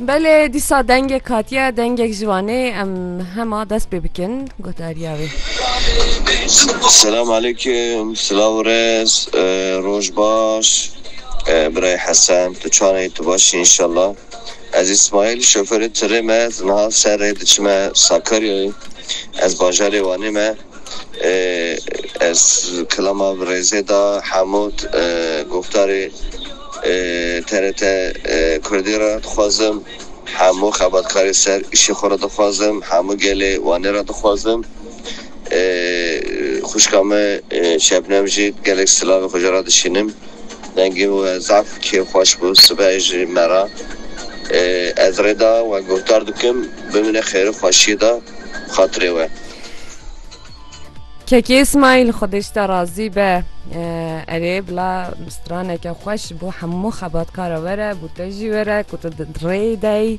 Belê dîsa dengek hatiye dengek ji Wanê em hema dest pê bikin gotariya wê. Selam aleyküm, silav rez, e, roj baş. E, Birey Hesen, tu çaneyî tu baş î inşallah. Ez Îsmaîl şoferê tirê me di niha ser rê diçime Sakaryayê ez bajarê Wanê me ez kilama bi rêzê da hemû goftarê TRT kurdî re dixwazim hemû xebatkarê ser îşê xwe re dixwazim hemû gelê Wanê re dixwazim xwişka me Şebnem jî gelek silavê xwe jê re dişînim. Dengê we zaf kêfxweş bû sibehê ji me re. Ez rê da we guhdar dikim bimîne xêr û xweşiyê de xatirê we. Kekê Îsmaîl xwedê ji te razî be. Erê bila straneke xweş bo hemû xebatkara we re bo te jî we re ku tu rê dayî.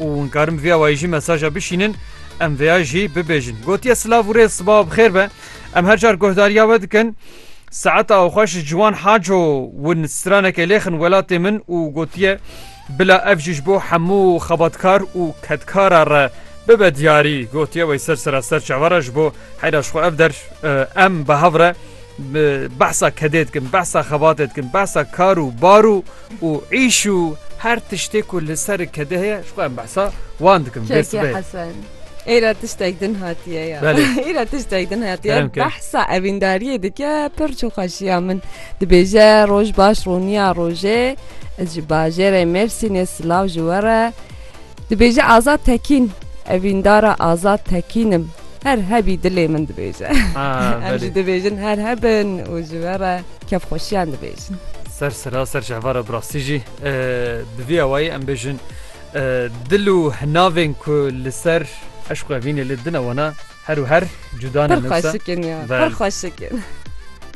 û hûn karin bi vê awayî jî mesaja bişînin, em vê ya jî bibêjin. Gotiye silav û rêz sibawa bi xêr be. Em her car guhdariya we dikin. Saeta xwe ji Ciwan Haco win straneke lêxin welatê min û gotiye bila ev jî ji bo hemû xebatkar û kedkara re bibe diyarî. Gotiye wey ser sera ser çavara ji bo heyra ji xwe ev der em bi hev re behsa kedê dikin, behsa xebatê dikin, behsa kar û bar û û îş û her tiştê ku li ser e kede heye ji xwe em behsa wan dikim. Dê Keke sibe. Hesen. Îra tiştek din hatiye ya. Belê. Îra tiştek din hatiye Kerem ke. behsa evîndariyê dike pir çû xweşiya min dibêje roj baş rûniya rojê ez ji bajêrê Mêrsînê silav ji we re Dibêje Azad Tekîn Evîndara Azad Tekîn im her hebî dilê min dibêje. Em jî dibêjin her hebin û ji we re kevxweşiyan dibêjin. Ser sera ser cevara birastî jî bi vî awayî em bêjin dil û hinavên ku li ser eşq û evînê lê dine wana her û her cuda ne. Pir xweşik in ya pir xweşik in.